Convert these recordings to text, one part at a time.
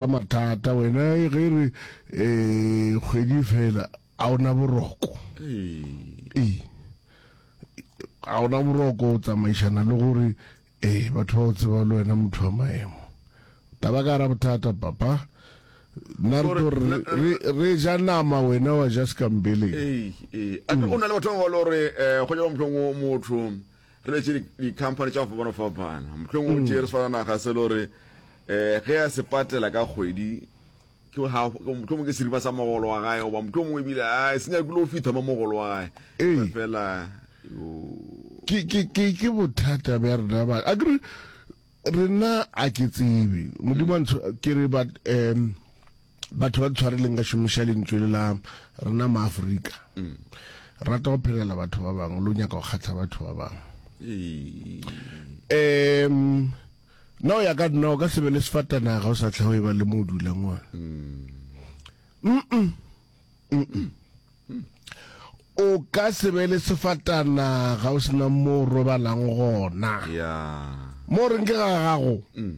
Ka mathata wena ge re eh, kgwedi fela a ona boroko ee a ona boroko o tsamaišana le gore ee batho ba o tseba le wena motho wa maemo taba ka ra bothata papa nna re tlo re- re- re ja nama wena wa ja sekambeleng ee ee a ke go na le batho ba ba le gore um go nyaka mohlong motho re letše dikhamphane tša go fapana-fapana mohlong o tee re swana naga se le gore um ge a se patela ka kgwedi mohlomong ke seripa sa mogolo wa gae goba mohlomong ebile a se nyakile go fitha mo mogolo wa gae ee. fela ke bothata bja rena ba a kere re nna a ke tsebe modimo a ntsho ke re but um batho ba tshwareleng ka šomiša lentswe le la rena maaforika mm. rata go phelela batho ba bangwe lo nyaka go kgatlha batho ba bangwe um na o ya ka nna o ka sebe le sefatanaga o sa tlhago e ba le mo o dulang one mm. o ka se be le sefatana ga o sena mo o robalang gona ya mo reng ke ga gago mm,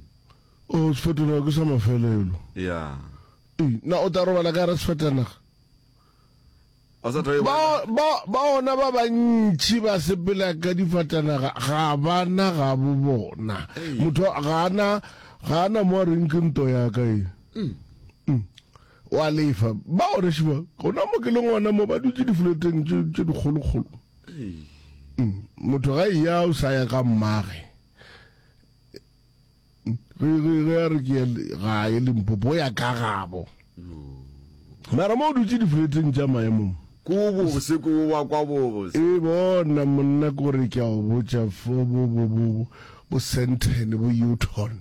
o sefatana ke sa mafelelo ya Ee, na o tla robala ka ra sefatanaga o sa tla e bona. ba ba- ba ona ba bantši ba sepela ka difatanaga ga bana ga bo bona Ei. motho ga ana ga ana mo a reng ke nto ya ka e O a lefa. Ba oreše ba, gona mo ke leng gona mo, ba dutše difuleteng tše, tše dikgolokgolo. Mm, Motho ga eya o sa ya ka mmage. Mm, Ge, ge, ge a re ke ya le- gae Limpopo, o ya ka gabo. Mara mo o dutše difuleteng tša maemong, Ko bobose, ko wa kwa bobose. e bona monna, ke gore ke a o botša, fo bo, bo, bo, bo, bo Sandton, bo Houghton.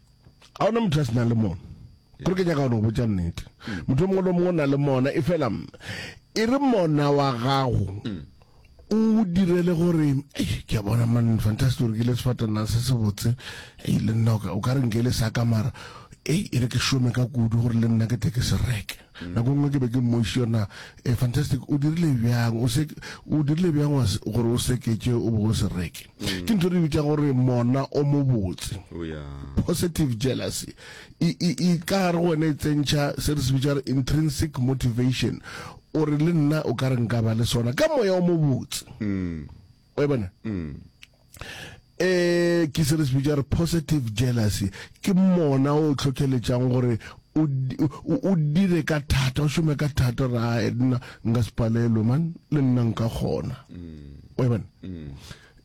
ga ona motho a se na le mona gore ke nyaka go botsa nnete motho mongwe le mongwe na le mona e fela e re mona wa gago mm. o direle gore ke a bona man fantastic gore ke le sefatana se se botse e le nna o ka re nke le sa ka mara e e re ke shome ka kudu gore le nna ke tle ke se reke Nako nngwe ke be ke mmoišitše na, eh, fantastic, o dirile bjang, o se, o dirile bjang wa se, gore o seketše o be o se reke. Ke ntho re bitša gore mona o mobotse. O ya. Positive jealousy e, e, e tla gare go wena e tsentšha se re se bitša gore intrinsic motivation, o re le nna o ka re nka ba le sona ka moya o mobotse. wa e bona um ke se re se bitša gore positive jealousy ke mona o tlhotlheletšang gore o di- o- o dire ka thata o šome ka thata gore ae nna nka se palelwe man le nna nka kgona wa e bona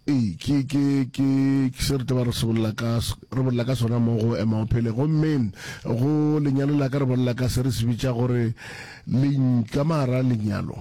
ee ke ke ke ke se re taba re se bolela ka s- re bolela ka sona mo go ema o phele gomme go lenyalo la ka re bolela ka se re se bitša gore lentša mara lenyalo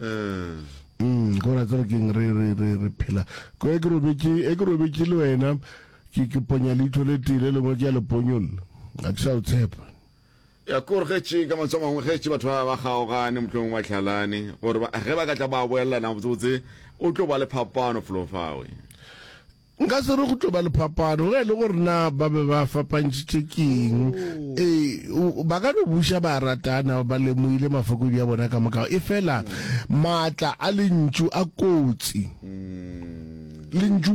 Mm, gore tsere ke re re re re phela. Ko e ke robetše e ke robetše le wena ke ke ponya leitho le tile le ngwe ke ya le ponyolla. A ke sa o tshepa. ya kore ge tše ka matso mangwe ge tše batho ba ba kgaogane motlong ba tlhalane gore ge ba ka tla ba boelelana botsebotse o tlo ba le phapano folofawe Nka se re go tlo ba le phapano ge e le gore na ba be ba fapantšhitše keng. E, ba ka no buša ba ratana ba lemoile mafokodi a bona ka moka. E fela maatla a lentšu a kotsi. Lentšu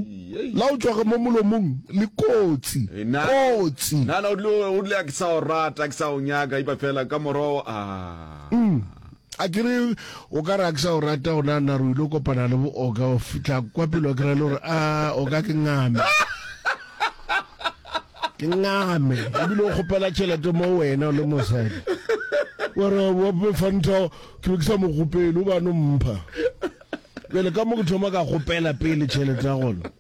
la go tšwaga mo molomong le kotsi, kotsi. Nana o tlile o tlile a ke sa o rata, a ke sa o nyaka, ipa fela ka morogo a. A ke re, o ka re a ke sa o rata gona nna re ile kopana le booka o fitlha kwa pele wa kry-a le gore a o ka ke ngame ke ngame ebile o kgopela tšhelete mo wena o le mosadi gore wape fanta ke be ke sa mo kgopele o bano mpha bjale ka mo ke thoma ka kgopela pele tšhelete ya gona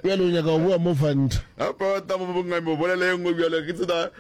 bjale o nyaka go boa mo fanta apa tamo bongame o bolela engwe bjale ke tsena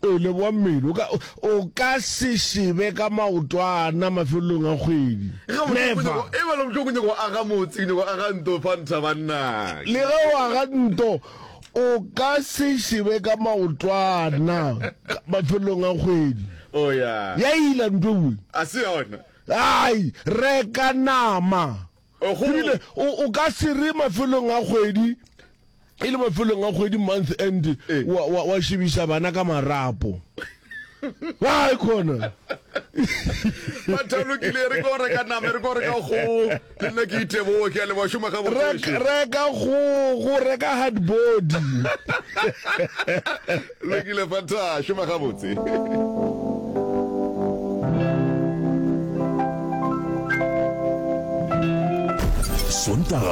E le boammele, o ka, o ka se šebe ka maotwana mafelelong a kgwedi. Never. E bala bohloko, nyaka go aga motse, nyaka go aga nto, fa ntha banna. Le ge o aga nto, o ka se šebe ka maotwana mafelelong a kgwedi. Oh, ya. Ya ila nto ewe. A se yona. Ai, reka nama. E bile o, o ka se re mafelong a kgwedi, e le mafelong a kgwedi, month end, wa, wa, wa šebiša bana ka marapo. Why khona? Bathalo ke le re go reka nama re go reka go le nna ke iteboge ke a leboga šoma ga botsweši. Reka go go reka hard body. Lokile Fanta, šoma gabotse.